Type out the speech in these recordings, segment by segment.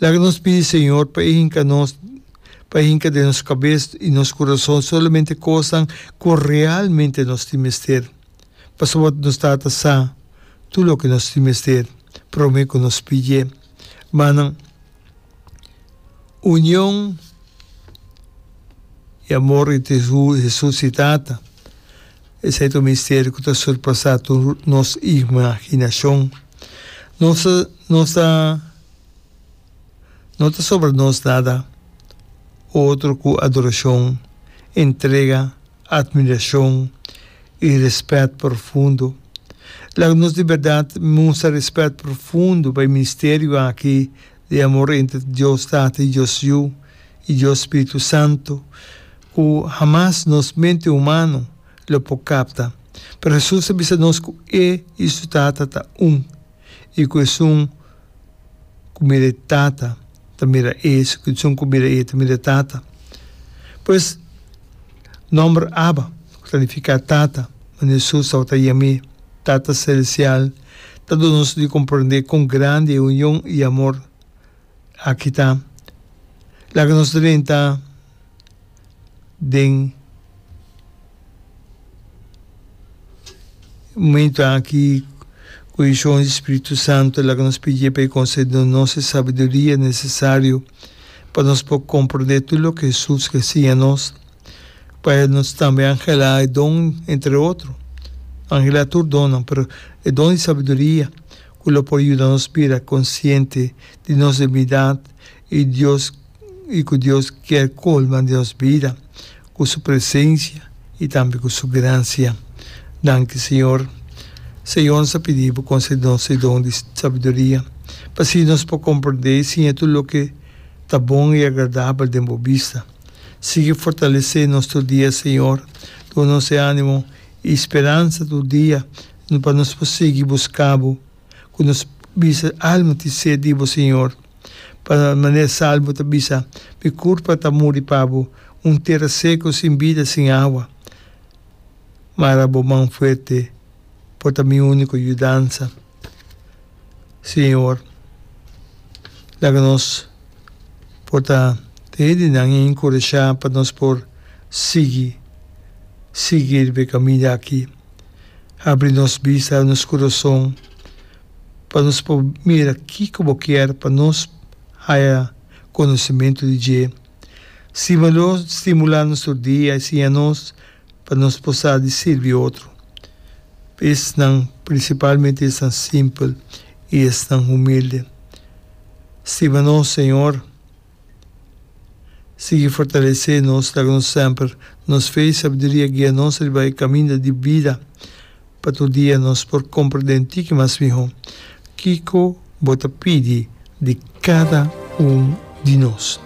Laga nos pidi Señor pa E hinka nos, pa E hinka den nos kabes i nos kurason solamente kosnan ku realmente nos tin mester, pasobra nos Tata sa tur loke nos tin mester promé ku nos pidié. Manan, union i amor entre Jesus i Tata. Esei ta un misterio cu ta surpasa tur nos imaginacion. Nos ta nos ta no ta sobra nos nada otro cu adoracion, entrega, admiracion y respet profundo. Laga nos di berdad mustra respet profundo pa e misterio aki di amor entre Dios Tata i Dios Yu i Dios Spiritu Santu ku hamas nos mente humano lo por kapta. Pero Hesus ta bisa nos ku e i su Tata ta un i ku esun ku mira e Tata ta mira e i esun ku mira e ta mira e Tata. Pues, nòmber Abba, ku ta nifiká Tata, manera Hesus tabata yam'é, Tata Selestial, Ta duna nos di comprende con grandi e union y amor aki ta. Laga nos drenta den momento aki cu e uncion di Spiritu Santo. Laga nos pidié pa e concedi no nos e sabiduria necesario pa nos por comprende tur loke Jesus ta siña nos. Pa e nos tambe anhelá e don, entre otro. Anhelá tur donnan, pero e don di sabiduria, ku lo por yuda nos bira konsiente di nos debilidat i Dios i ku Dios kier kolma den nos bida ku su presensia i tambe ku su gransia. Danki, Señor. Señor, nos a pidi Bo konsede nos e don di sabiduria, pa así nos por komprendé i siña tur loke ta bon i agradabel den Bo bista. Sigui fortalesé nos tur dia, Señor. Duna nos e ánimo i speransa tur dia pa nos por sigui buscá Bo cu nos bisa, Alma tin sed di Bo, Señor. Pa manera Salmo ta bisa, Mi curpa ta muri pa Bo, un tera seco sin bida, sin awa. Mara Bo man fuerte por ta mi único yudansa. Señor, laga nos por ta den e di nan encourashá pa nos por sigui, sigui riba e kaminda aki. Habri nos bista, habri nos kurason pa nos por mira kiko Bo kier pa nos haya konosementu di dje. Stimulá nos tur dia i siña nos. pa nos por sa di sirbi otro, pa esnan, prinsipalmente esnan simpel i esnan humilde. Stima nos Señor, sigui fortalesé nos, laga nos semper nos fe i sabduria guia nos riba e kaminda di bida. Pa tur dia nos por compra den tiki mas miho. Kico bo ta pidi di cada un di nos?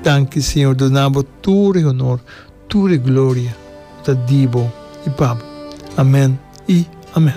Danki Señor do na bo tur e honor, tur e gloria, bo ta di bo y pa bo. Amen y amen.